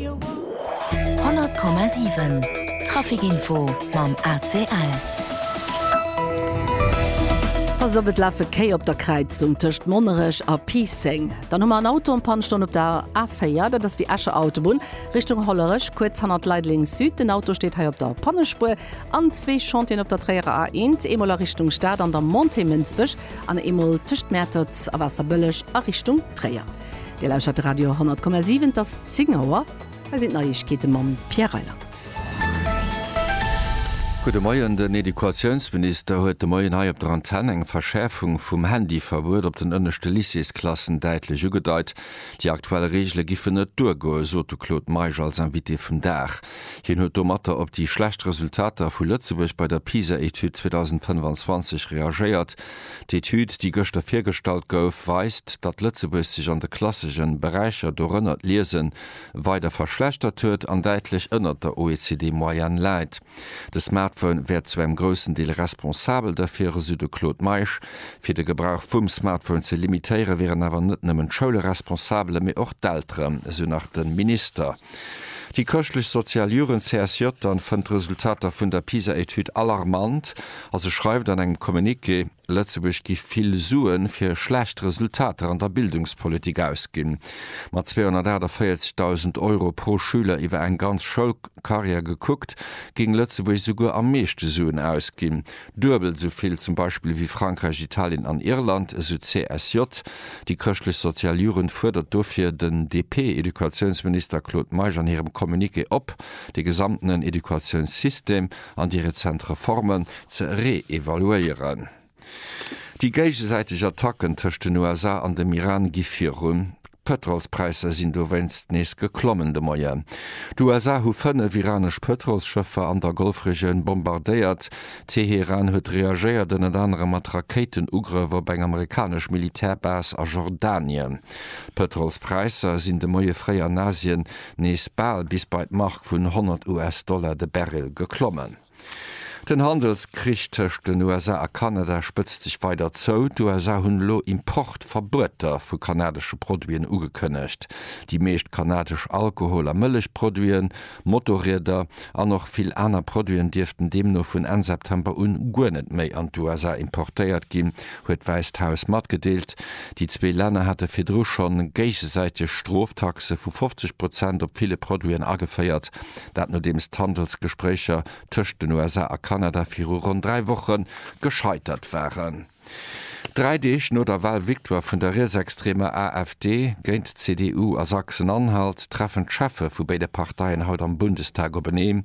100,7 Trafic Info mam ACL. Pass op, et lafe Kéi op der Kräizung tëscht Monnerech a Piisseng. Dann hu mer en Auto en Panne stoen op der A4, dat ass déi Escher Autobunn Richtung Hollerech, kuerz hannert Leideleng Süd. Den Auto steet hei op der Pannespuer. An zwee Chantieren op der Tréierer A1, eemol a Richtung Stad an der Montée Mënsbech an eemol tëscht Mäertert a Waasserbëlleg a Richtung Tréier. Dir lauschert de Radio 10,7, et ass 10 Auer. Hei sinn d'Neiegkeete mam Pierre Reyland. Gudde Moien, Den Educatiounsminister huet de Moien hei op der Antenn eng Verschäerfung vum Handyverbuet op den ënneschte Lycéesklassen däitlech ugedeit. Déi aktuell Reegele giffen net duergoen, sot de Claude Meisch als Invité vum Dag. Hien huet domatter op déi schlecht Resultater vu Lëtzebuerg bei der PISA-Etüd 2025 reagéiert. D'Etüd, déi gëschter virgestallt gouf, weist, datt Lëtzebuerg sech an de klassegen Beräicher, dorënner d'Liesen, weider verschlechtert huet an däitlech ënnert der OECD-Moyenne läit. De Smartphone wär zu engem groussen Deel responsabel derfir, esou de Claude Meisch. Fir de Gebrauch vum Smartphone ze limitéieren, wieren awer net nëmmen d'Schoule responsabel, mee och d'Elteren, esou nach de Minister. Déi chrëschtlech-sozial Jugend CSJ dann fënnt d'Resultater vun der PISA-Etüd alarmant a se schreift an engem Communiqué, Lëtzebuerg gi vill Sue fir schlecht Resultater an der Bildungspolitik ausginn. Mat 248.000 Euro pro Schüler iwwer eng ganz Schoulkarriär gekuckt, géing Lëtzebuerg esouguer am meeschte Suen ausginn, Duebel esou vill zum Beispill ewéi Frankräich, Italien an Irland, esou d'CSJ. Déi Chrëschtlech-Sozial Jugend fuerdert dofir den DP-Educatiounsminister Claude Meisch an hirem Communiqué op, de gesamtenen Educatiounssystem an déi rezent Reformen ze reevaluéieren. Déi géigesäiteg Attacken tëscht den USA an dem Iran gi virun. D'Pëtrolspräisser sinn dowéinst nees geklommen de Moien. D'USA hu fënnef iranesch Pëtrolsschëffer an der Golfregioun bombardéiert. Teheran huet reagéiert, ënnert anerem mat Rakéitenugrëff op eng amerikanesch Militärbase a Jordanien. D'Pëtrolspräisser sinn de Moie fréi an Asien nees bal bis bei d'Mark vun 100 US-Dollar de Barrel geklommen. Den Handelskrich tëscht den USA a Kanada spëtzt sech weider zou. D'USA hunn elo Importverbueter vu kanadesche Produiten ugekënnegt. Déi meescht kanadesch Alkohol a Mëllechproduiten, Motorrieder an och vill aner Produiten dierften deemno vun Enn September un guer net méi an d'USA importéiert ginn, huet d'Wäisst Haus matgedeelt. Déi zwee Länner hate virdru scho géigesäiteg Stroftaxe vu 50 Prozent op ville Produiten ageféiert. Dat nodeems d'Handelsgespréicher tëscht den USA a Kanada viru ronn dräi Woche gescheitert waren. Dräi Deeg no der Wahlvictoire vun der rietsextreemer AfD géint d'CDU a Sachsen-Anhalt treffen d'Cheffe vu béide Parteien haut am Bundestag openeen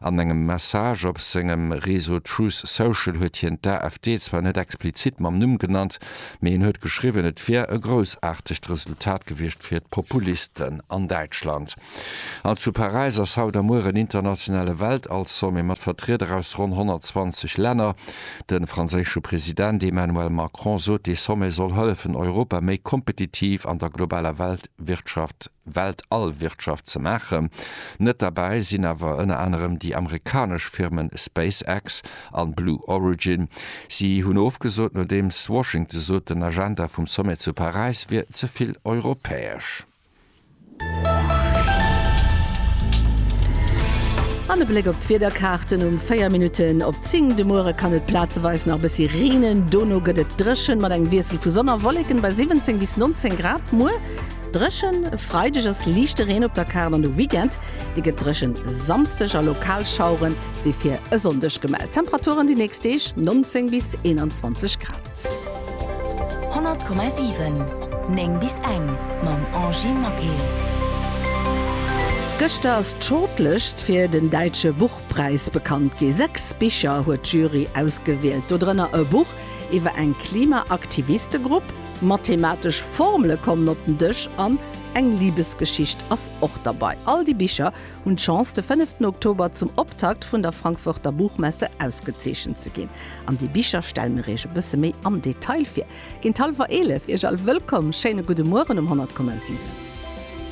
An engem Message op sengem Reseau Truth Social huet hien d'AfD zwar net explizit mam Numm genannt, mee hien huet geschriwwen, et wier e groussaartegt Resultat gewiescht fir d'Populisten an Däitschland. An zu Paräis ass haut a muer en internationale Weltall-Sommet mat Vertrieder aus ronn 120 Länner. De franséische President Emmanuel Macron sot, dee Sommet soll hëllefen, Europa méi kompetitiv an der globaler Weltwirtschaft Weltall-Wirtschaft ze maachen. Net derbäi sinn awer ënner anerem déi amerikanesch Firmen SpaceX an Blue Origin. Si hunn ofgesot, nodeems Washington sot, den Agenda vum Sommet zu Paräis wier ze vill europäesch. An e Bléck op d'Wiederkaarten um 4 Minutten op 10. De Muere kann et plazeweis nach e bëssi reenen, dono gëtt et dréchen, mat engem Wiessel vu Sonn a Wolleken bei 17 bis 19 Grad. Muer. Dréchen, E Freideg ass liichte Reen op der Kaart an de Weekend, dee gëtt dréchen. Samsdeg a lokal Schauere si fir e Sonndeg gemellt. Temperaturen déi nächst Deeg, 19 bis 21 Grad. 100,7 9 bis eng mam Angy Maquet. Gëschter ass d'Shortlëscht fir den Däitsche Buchpräis bekannt gi. Sechs Bicher huet d'Jury ausgewielt, dodrënner e Buch iwwer eng Klimaaktivistegrupp, Mathematesch Formele kommen op den Dësch an eng Libesgeschicht ass och derbei. All déi Bicher hunn d'Chance, de fënneften Oktober zum Optakt vun der Frankfurter Buchmesse ausgezeechent ze ginn. An déi Bicher stelle mir Iech e bësse méi am Detail vir. Géint hallwer 11 Iech all wëllkomm, schéine gudde Mueren um 100,7.